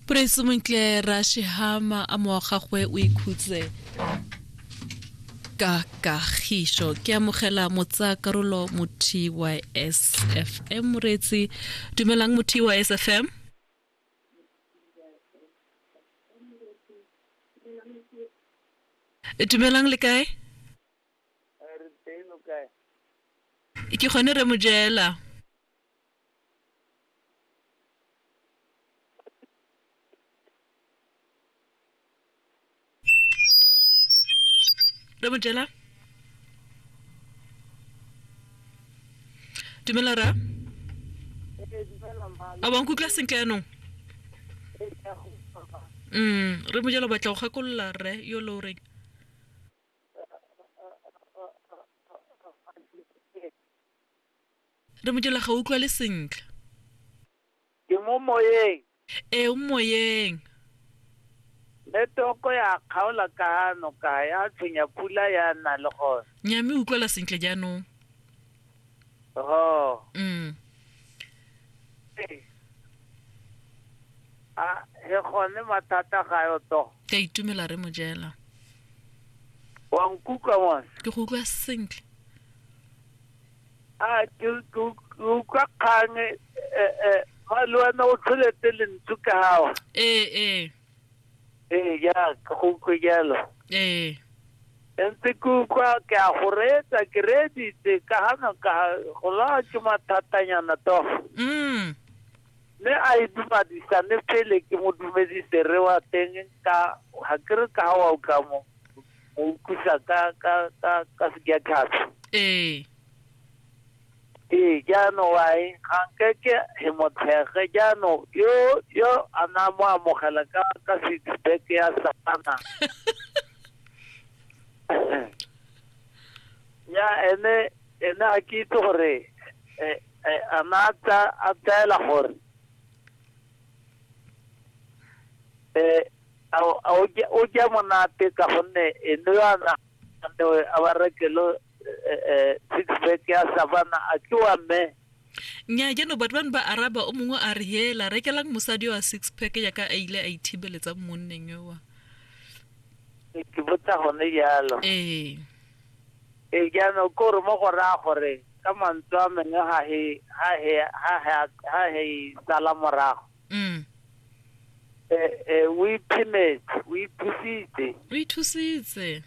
Praise Montle Rashihama a mowa gagwe o ikhutse ka kagišo ke amogela motsa karolo mo TYSFM moretsi dumelang mo TYSFM dumelang le kae ke gone re mo jela re mojela dumela ra a wa nkutlwa sentle yanong mm re mojela o batla go gakolola rre yo lo reng Re mojela ga utlwale sentle. Ke mo moyeng. Ee o moyeng. Network ya kgaola ka noka ya tshwenya pula ya nna le gone. Nya me utlwala sentle jaanong. Ho. Mm. A he gone mathata ga yo to. Ke a itumela re mojela. Wa nkutlwa mos. Ke go utlwa sentle. a ke ke- ke utlwa kgang e e e fa le wena o tlholetse lentswe ka gawa ee ee ee ya ke go utlwe jalo ee e ntse ke utlwa ke a go reetsa ke reeditse ka gana ka go lawa ke mathatanyana toga mm mme a e dumadisane pele ke mo dumedise re wa teng ka ga ke re ka ga wa utlwa mo o utlwisa ka ka ka ka sekiatlhatsho ee ee jaanong wae ga nkeke he mo tshege jaanong yo yo a na mo amogela ka ka six pack ya satana ya ene ene a ke itse gore eh, eh, a na a tsa- a tsaela gore eh A o- a o ja- o ja monate ka gonne eno yana aneo a ba rekelo eh, eh, six pack ya savana a ke wa mme nya jano batho bane ba araba o mongwe a re hela rekelang mosadi wa six pack yaka a ile a ithibeletsa mo monneng yowa ke botsa gone jalo ee e jaanong ke gore mo go raya gore ka mantswe a mengwe ga he ga he ga he ga he sala morago mm. eh, eh, o iphemetse o ithusitse o ithusitse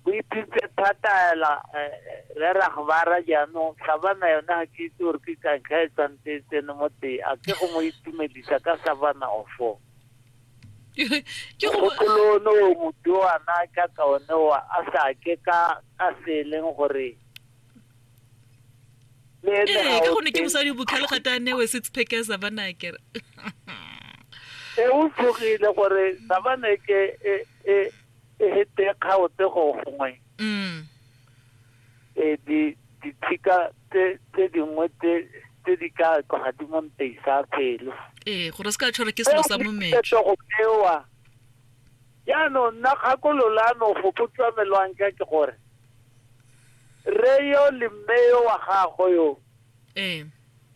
o ithusitse thata ela eh, re ragobara jaanong sabana yone ga ke itse gore ke kantlha e tsantse e tsene mo tee a ke go mo itumedisa ka sabana ofo gopolone o moduana ka kaone wa a sa ke ka ka se e leng gore le ene ee ga ka o gonne ke teng. mosadi o bokhale gata a newe six pack ya savana kere e o tlogile gore savane ke e e e hete kgaotse go gongwe mm e di dithika tse tse dingwe tse tse di ka tloga di mo nteisa pelo ee gore se ka tshwarwa ke selo sa mometso go bewa jaanong nna kgakololano go botsamelwang ka ke gore Rre yo le mme yo wa gagwe yo. Ee.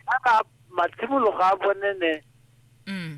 Kana matshimologo a bone ne. Mm.